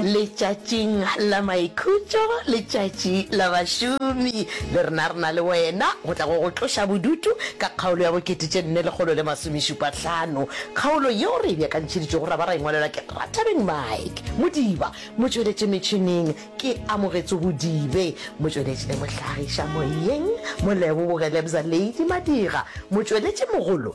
Letšatšing la Maikhutšo, Letšatši la Bašomi, le rena re na le wena go tla go go tloša bodutu ka kgaolo ya bokete tše nne lekgolo le masomešupahlano. Kgaolo yeo re e beakantšheditšego ra ba ra e ngwalelwa ke Rathabeng Mike Modiba, motšweletši metšhineng ke Amogetso Bodibe, motšweletši le mohlagiša moyeng Moleboge Lebza Lady Madira, motšweletši mogolo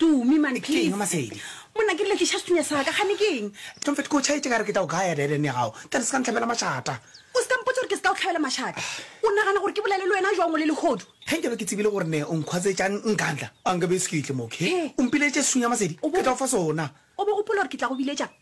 Tumi, man, please. Keng, Masedi? Monna, ke letliša sethunya sa ka, gane keng? Comfort, ko tšhaetše ka re ke tla o gaya deren ya gago. Tla re se ka ntlhabela mašata. O se ka mpotsa gore ke se ka o tlhabela mašata. O nagana gore ke bolele le wena jwang o le lehodu? Ge nkabe ke tsebile gore ne o nkhwatsetšang nkantla, a nkabe e se ke itle mo, okay? O mpiletše sethunya, Masedi, ke tla o fa sona. O bo gopola gore ke tla go biletša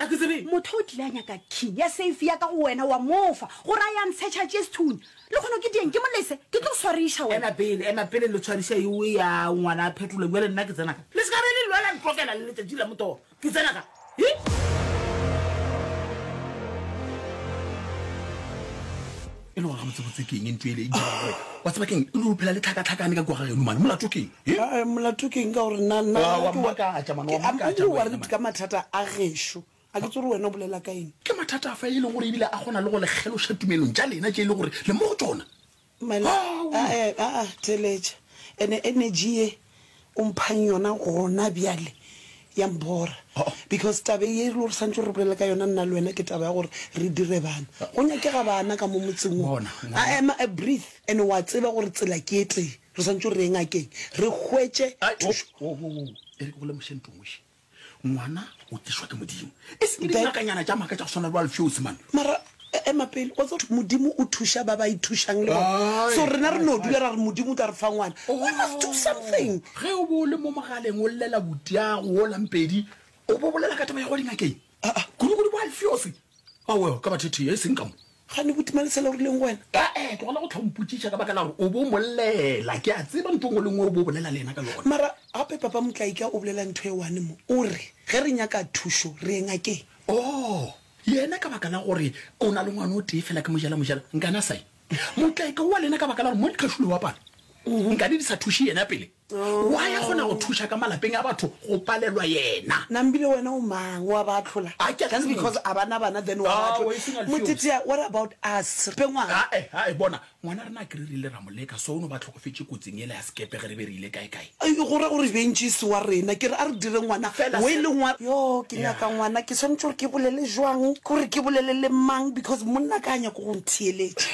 A ke tsebe motho o tlile a nyaka key ya safe ya ka go wena, wa mo fa, gore a ya ntshetšha chestun. Le kgone ke dieng ke mo lese, ke tlo go swariša wena. Ema pele, ema pele lo tshwariša ewe ya ngwana a phetlola, bjale nna ke tsena ka. Le se ka be le lwela ntlokela le letšatši la motoro, ke tsena ka. Hi! e le gore gabotsebotse ke eng ntho ele e diragore wa tseba keng e le ophela le tlhakatlhakane ka kua ga geno mane molato keng eh? molato keng ka gore nawaredi ka mathata a gešo a ke tsore wena o bolela ka eng ke mathata a fa e leng gore ebile a kgona le go lekgeloša tumelong ja lena je e le gore le mo go tsona theletša ene energy ye O mphang yona gona bjale, ya mbora. Because taba ye e le gore santse re bolela ka yona nna le wena ke taba ya gore re dire bana. Go nyakega bana ka mo motseng wo. I am a breathe and wa tseba gore tsela ke e tee. Re santse re ye ngakeng re hwetše thušo. Wo, wo, wo, wo, wo, e re ke go lemoše ntho ngoši. Ngwana o tlišwa ke Modimo, e seng ke dingakanyana tša maaka tša go swana le wa lefeosi man. Mara e- ema pele, wa tseba Modimo o thuša ba ba ithušang le bona. Ae, So rena re ae, no ae. dula ra re Modimo o tla re fa ngwana. We must do something. Ge o bo o le mo mogaleng o llela butiago o lampedi, o bo bolela ka taba ya go dingakeng. Aa, kudu kudu kwa Alfiofi. Awel, ka bathethea, e seng ka mo. Ga ne botima lesela o rileng go wena? Ee, tlogela go tlha o mpotšiša ka baka la gore o bo mo llela. Ke a tseba ntho nngwe le nngwe o bo bolela le yena ka yona. Mara gape Papa Motlaika o bolela ntho e one mo, o re ge re nyaka thušo re ye ngakeng. Oo, yena ka baka la gore o na le ngwana o tee fela ke mojela mojela, nkane a sa ye. Motlaika o wa lena ka baka la gore mo le tlhašulo wa pala, nkane di sa thuše yena pele. Why a kgona go thuša ka malapeng a batho go palelwa yena? Nambile wena o mang wa ba ahlola A ke a just tseba. because a bana bana then wa ba Ah, ahlola. o e sena lefiosi. Motetea what about us re pe ngwana Ae, ae, bona ngwana rena ke re re ile ra mo leka so o no ba tlhokofetše kotsing ele ya sekepe ge re be re ile kaekae Ai, go ra gore bentšisi wa rena ke re a re dire ngwana Fela we se- le ngwana yo ke Yeah. nyaka ngwana ke tshwanetse gore ke bolele jwang ke gore ke bolele le mang because monna ka a nyako go ntheeletša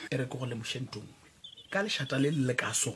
e re ke go lemoše nto nngwe ka lešata le le le ka so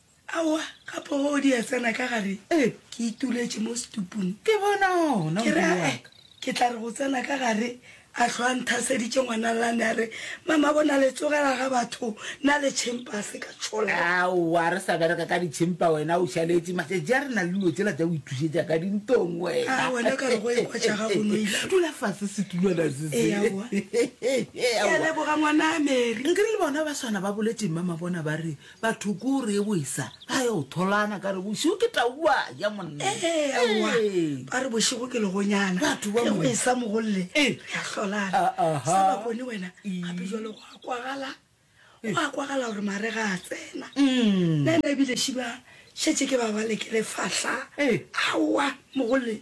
Aowa, gape o di a tsena ka gare. Ee. Ke ituletše mo setupung. Ke bona ona, Ke re, modimo wa a-e, ka. ke tla re go tsena ka gare, a hlwa a nthaseditše ngwana Lane a re, Mama, bona le tsogela ga batho, na le tšhempa a se ka tšhola. Aowa, re sa bereka ka ditšhempa, wena o šaletše. Matšatši a re na le dilo tšela tša go ithušetša ka dintong, wena. Aa, wena ka re go ekwa tša gago no ile. Dula fase setulwana se se. Ee, aowa. Ke a Aowa. leboga ngwana Mary. Nke re le bona ba swana ba boletše, Mama, bona ba re, batho ko re e boisa ba yo tholana ka re bošego ke taua ya monna ewa Ee. ba re bošego ke legonyana Batho ba ge mo- o e sa mogolle Eh. ya hlolana Ah, aha. sa bakone wena Ee. gape jalo go a kwagala go a kwagala gore mare ga a tsena Mm. nna ena ebile šiba šetse ke ba ba lekele fahla Eh. aowa mogolle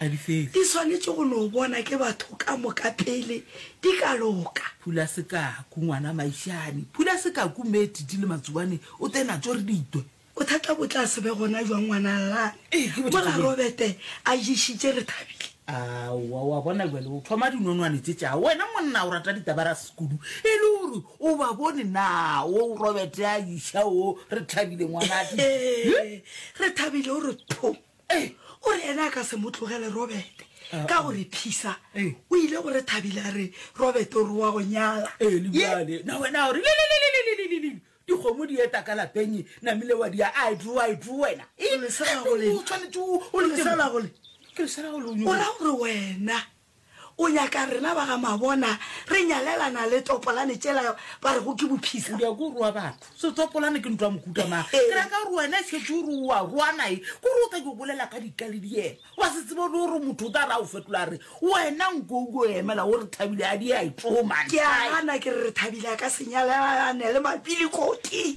a difefo. Di swanetše go no bona ke batho ka moka pele di ka loka. Phula sekaku, ngwana Maishane. Phula sekaku, Mme Titi le Matsobane o te natso re di twe. Bothata bo tla se be gona jwang ngwana Allane? Ee, ke bothata bjoo. Mola Robete a ješitše re thabile. Aowa, wa bona bjale o thoma dinonwane tše tša wena. Monna o rata ditabaras kudu. E le gore o ba bone na wo Robete a iša wo re thabile ngwana Titi? Ee, re thabile o re pho. Ee, o re ene a ka se mo tlogele Robete ka gore Phisa Ee. o ile go re Thabile a re Robete o re wa go nyala. Ee, le Ye- bjale na wena o re lelelelelelelelele dikgomo di eta ka lapeng namile wa dia a dru a dru wena Ee, Lesela go le- o tshwanetse o- o le lesela go le- ke lesela go le o o nyoko- ra gore wena O nyaka rena ba ga Mabona re nyalelana le topolane tšela ba re go ke bophisa. O nyaka o rua batho. Se topolane ke ntwa mokuta ma. Ke ra ka rua ena se tšo rua rua nae. Ko re o tla ke bolela ka dika le diena. Wa se tsebo le hore motho o tla ra o fetola re. Wena nko o go emela o re thabile a di a tšo man. Ke a gana ke re thabile ka senyalelane le mapili koki.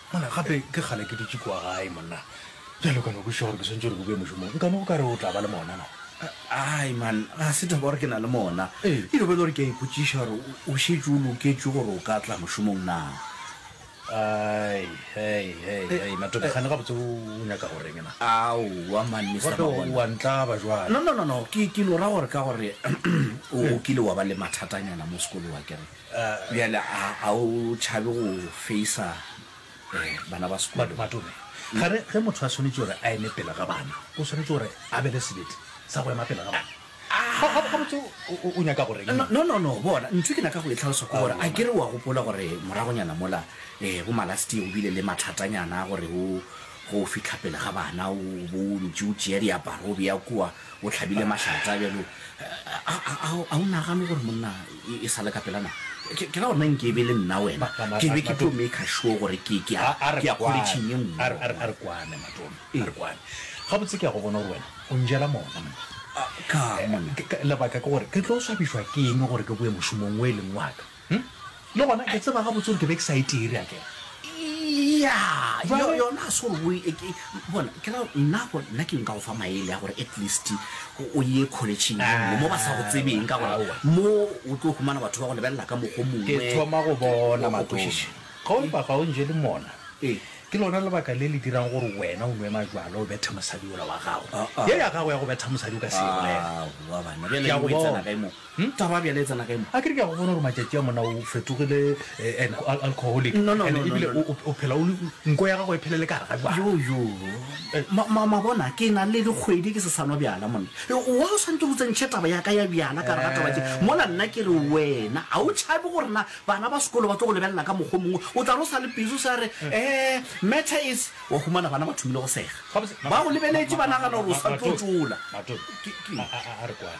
Monna, Gape ke kgale ke dutše kua gae, monna. Bjale o ka no kwešiša gore ke swantšwe gore ke boe mošomong. Nka no o ka re o tla ba le mona na? Ai, man, ga se taba gore ke na le mona. Ee. Eno ba e le gore ke a ipotšiša gore o šetše o loketše gore o ka tla mošomong na. Ai, hei, hei, hei, Matope, kgane gabotse o nyaka go reng na? Aowa, man, Mister Gape Mabona. wa ntlaba bjale. No, no, no, no, ke, ke no ra gore ka gore o kile wa ba le mathatanyana mo sekolowa, ke re, Bjale a a o tšhabe go feisa bana ba sekolo? Matome, ga re ge motho a swanetše gore a eme pele ga bana, o swanetše gore a be le sebete sa go ema pele ga bana. Gabotse o nyaka go reng? No, no, no, bona, ntho e ke nyaka go e tlhalosa ke gore a ke re o a gopola gore moragonyana mola bo malastie go bile le mathatanyana a gore o ge o fihla pele ga bana o bo o ntše o tšea diaparo o bea kua, O hlabile mašata bjalo. A o nagane gore monna e sa le ka pela na? Ke ka gona nke e be le nna wena. Ke be ke tlo maker sure gore ke ke ya quality ye nngwe. A re kwane Matome, a re kwane. Gabotse ke ya go bona gore wena o njela mona monna. Ka'ng monna? Lebaka ke gore ke tlo swabišwa ke eng gore ke boe mošomong o e leng wa ka? Hm? Le gona ke tseba ga botsoro ke be ke sa e tiri a kere. Ya, Jwale- yo- yona se gore o e- ke- bona ke ra nna go nna ke nka go fa maele a gore at least o o ye college ye nngwe mo ba sa go tsebeng ka gore Aowa. mo o tlo humana batho ba go lebelela ka mokgo mongwe ke thoma go bona Wa go matone kwešiša. ga o mpa ga o nje le mona Ee. ke lona lebaka le le dirang gore wena o nwe majwala o bethe mosadi ola wa gago Ah, ah. ye ya gago ya go betha mosadi o ka se e bolela Aowa, bana, bjale Ke a go o e tsena bona. kae mo? Hm, taba bjale e tsena kae mo? Akere ke a go bona gore matšatši a mona o fetogile eh, an al- alcoholic. No, no, And no, no, ebile no, no. o- o- o phela o le- nko ya gago e phelele ka gare ga jwala. Yo, yo. Eh, Ma, ma, ma bona, ke na le dikgwedi ke se sa nwa bjala monna. Eh, Why o swantse go tsentšhe taba ya ka ya bjala ka gare ga taba tše? Mola nna ke re wena, ga o tšhabe gore na bana ba sekolo ba tlo go lebelela ka mokgwa o mongwe. O tla re o sa le busy o sa re, eh, matter is, wa humana bana ba thomile go sega. Gabotse, ma- Ba go ma- lebeletše ma- ba ma- nagana gore o ma- sa tlo Mathobi, tšola. Mathobi, Ke- ke- a- a- a- a re kwane.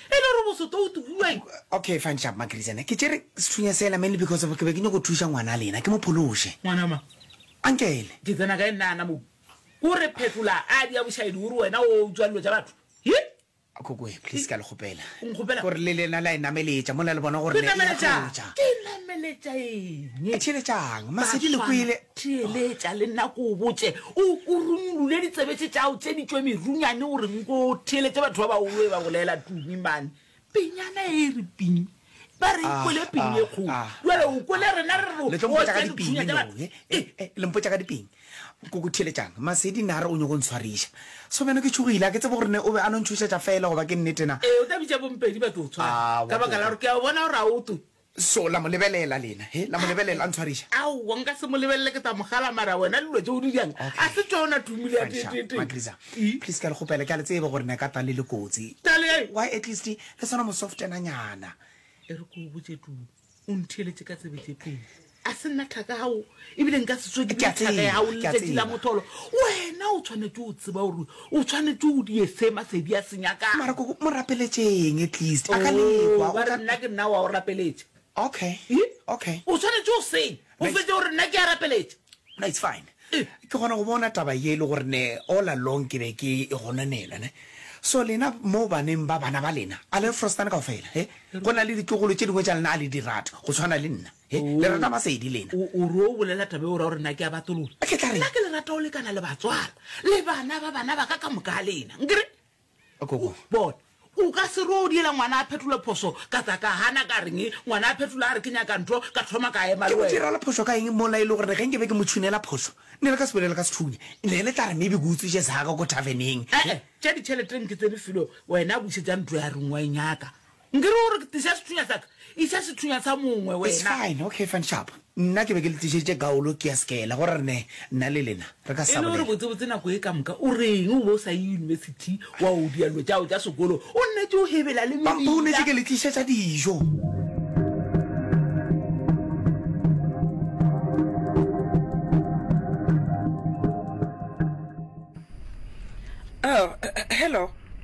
E le gore bosoto o tugueng? Okay fine sharp Makirizana, ke tšere sethunya sela mainly because of ke be ke nyoko thuša ngwana lena ke mo phološe. Ngwana mang? Uncle. Ke tsena kae nna ana mo? Ko re phetola adi ya bošaedi o re wena o utswa dilo tša batho? Hi! Kokoe, please ke a le kgopela. O nkgopela? Gore le lena la e nameletša mola le bona gore le e atlotša. Ke nameletša eng? Theeletšang, Masedi le kwele. theeletša le nna ko o botše o kurumolule ditsebetse tšao tše ditšwe merunyane o reng ko theeletše batho ba baolo e ba bolela tumi mane penyana e e re ping ba re ah, kwele ping e ah, kgolo ah, jale o kwele rena re reotlempotsa eh, eh, ka diping koko theeletšang masedi ne a re o nyoko ntshwariša so bjano ke tšhogile a ke tsebo gorene o be a no ntšhošetša fela goba ke nnetena ee o tla bitša bompedi ba tlo tshwara ka baka la gore ke a bona gore a o twe So la mo lebelela lena, he, la mo lebelela a ntshwariša. Aowa, nka se mo lebelele, ke tla mo gala, mara wena dilo tšeo di jang, a se tšona tumile ya Fansha, tee-tee-tee. Magriza, E? please ke a le kgopela, ke a le tseba gore ne ka tla le le kotsi. Tale ya eng? Why at least le swana mo softenanyana. E re ke o botše Tumi, o ntheeletše ka tsebe tše pedi. A se nna thaka ya gago, ebile nka se tsoge ke bile thaka ya gago le letšatši la motholo. Wena o tshwanetše o tseba gore o tshwanetše o die se Masedi a se nyakago. Mara koko, mo rapeletšeng at least, a ka lekwa. Oh, ba re nna ke nna wa o rapeletša. Okay, okay. O tshwanetše o seng, o fetše gore nna ke a rapeletša. No, it's fine. Ke kgona go bona taba ye e le gore ne all along ke be ke e gononela, ne. So lena mo baneng ba bana ba lena, a le Frostane kaofela, he? Go na le ditlogolo tše dingwe tša lena a le di rate, go tshwana le nna. He, le rata masedi lena. O, o ro bolela taba eo ra gore na ke a batolola. Ke tla re- Nna ke le rata o lekana le batswala le bana ba bana ba ka ka moka a lena. Nkere? Koko. Bona, o ka se ro o diela ngwana a phetole phoso ka tla ka hana ka reng ngwana a phetola a re ke nyaka ntho ka thoma ka ema Ke le mo wena. dirala phoso ka eng mola e le gore ge nke be ke mo tshunela phoso ne le ka se bolele ka sethunya ne le tla re maybe ke utswitše saka ko taveneng. Eh, eh, tša ditšheleteng ke tse di filo wena bušetsa ntlo ya reng wa e nyaka Nkere o re tliša sethunya sa ka? Iša sethunya sa mongwe It's wena. fine, okay fine, sharp. Nna ke be ke le tlišeditše gaolo ke ya sekela gore re ne nna le lena re ka E le gore sabolela. botsebotse nako e ka moka o reng o be o sa ye yunibesithi wa o dia dilo tšao tša sekolo o nnetše o hebela le Ba bonetše mebila. ke le tlišetša dijo. Oh, hello.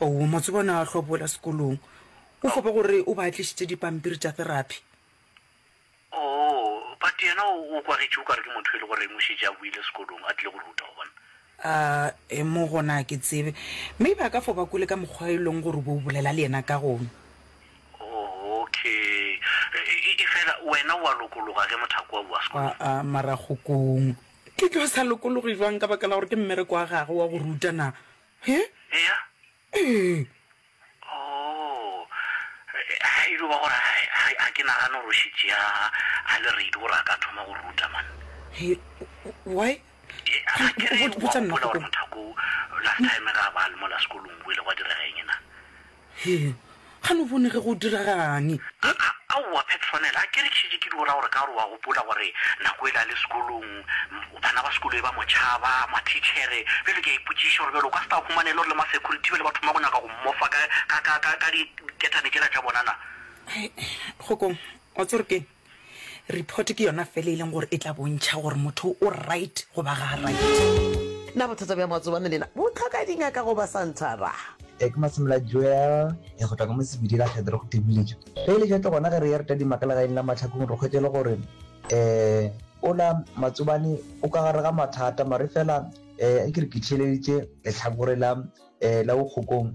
Oo, Matsobane a hlwa boela sekolong. O gopa gore o ba tlišitše dipampiri tša therapy. Oo, But yena o, o kwagetše o ka re ke motho e le goreng o šetše a boile sekolong, a tlile go ruta, o bona. A-e, mo gona a ke tsebe. Maybe a ka fo ba kwele ka mokgwa e leng gore o be o bolela le yena ka gona. Oo, Okay. E, efela wena o a lokologa ge mothako wa boa sekolong? A-a, mara Kgokong, ke tlo sa lokologe bjang ka baka la gore ke mmereko wa gagwe wa go ruta na? He? Eya. Ee. Oh. Ga e dio ba gore ga ke nagane gore o šitše ya a le reidi gore a ka thoma go ruta man. He, why? Ga ke re o a gopola gore mothako last time ga ba le mola sekolong o ile gwa direga eng na? Hee, ga no bone ge go diraga'ng. Pip, Aowa Petronel, a ke re tšhitše ke di o ra gore ka gore wa gopola gore nako e le a le sekolong bana ba sekolo be ba mo tšhaba, mathitšhere. Bjale ke a ipotšiša gore bjale o ka se tla humana e le gore le masecurity bjale ba thoma go nyaka go mmofa ka, ka, ka, ka, ka diketane tšela tša bona na? Kgokong, wa tseba gore ke'ng? Report ke yona fela e leng gore e tla bontšha gore motho o right goba ga a right. Na bothata bja matsobane lena bo tlhoka dingaka goba santhara? Ek Masemola Joel e go tla ka mo Sebidi la Kgetho re go thebuletše. Ge e le jatle gona ge re ya re tadima ka legaeng la Mahlakong re hwetše le gore um ola Matsobane o ka gare ga mathata mare fela um a ke re ke theeleditše lehlakore la um la Bokgokong.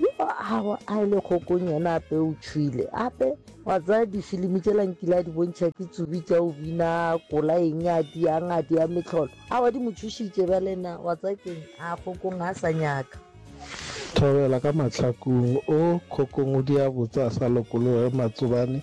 Yo a go a le kgokong yena ape o tšhwile ape wa tsaya difilimi tšela nkile a di bontšha ke tsubi tša o bina kola eng a di yang a di ya metlholo a wa di mo tšhošitše ba lena wa tsaya keng a kgokong ga a sa nyaka Thobela ka mahlakong o kgokong o di a botsa a sa lokologe matsobane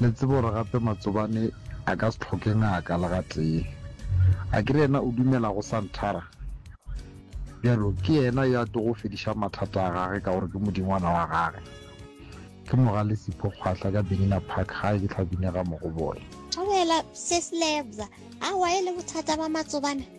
Le tsebe gore gape Matsobane a ka se tlhoke ngaka le gatee. A ke re yena o dumela go Santhara? Bjalo ke yena yo a tlogo go fediša mathata a gage ka gore ke modingwana wa gage. Ke mo ga Lesipho Kgwahla ka Benina Park gae ke Tlhabinega Mogobole. Thobela, Mrs. Lebza, awa e le bothata ba Matsobane?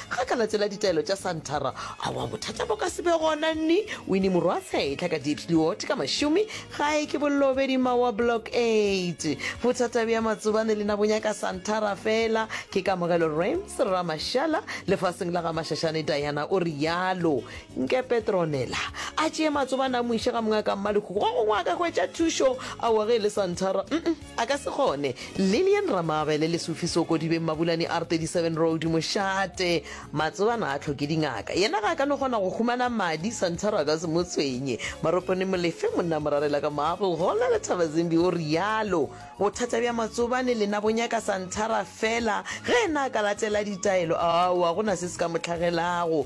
Ga ka latela ditaelo tša Santara, awa bothata bo ka se be gona. Nni, Winnie morwa Seetla ka Diepsloot ka mašome, gae ke Bollobedi mma wa Block 8. Bothata bja Matsobane le na bo nyaka Santara fela, ke Kamogelo Rams, Rra Mashala, lefaseng la ga Mashashane Diana, o realo. Nke Petronella a tšee Matsobane a mo iše ga Mongaka Mmalekhuku, go gongwe a ka hwetša thušo, awa ge e le Santara, umm. A ka se kgone. Lillian Ramabele, Lesufi Soko Dibeng Mabulani R 37 Road, Mošate. Matsobana a tlhoke dingaka. Yena ga a ka no kgona go humana madi, Santoro a ka se mo tshwenye. Maropone Molefe, Monna Morarela ka Marble Hall a Lethaba Zimbi o rialo. Bothata bja Matsobane lena bo nyaka Santara fela. Ge yena a ka latela ditaelo, aowa go na se se ka mo tlhagelago.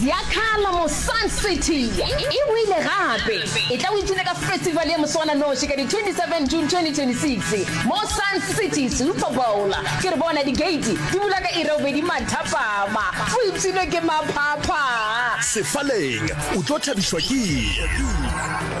Ziakhala mo Sun City e boile gape e tla o ipshine ka festival ya moswana noši ka di 27 June 2026 mo Sun City Super Bowl ke re bona di gate di bula ka ira obedi mathapama o ipshine ke maphapha. Sefaleng o tlo thabišwa ke.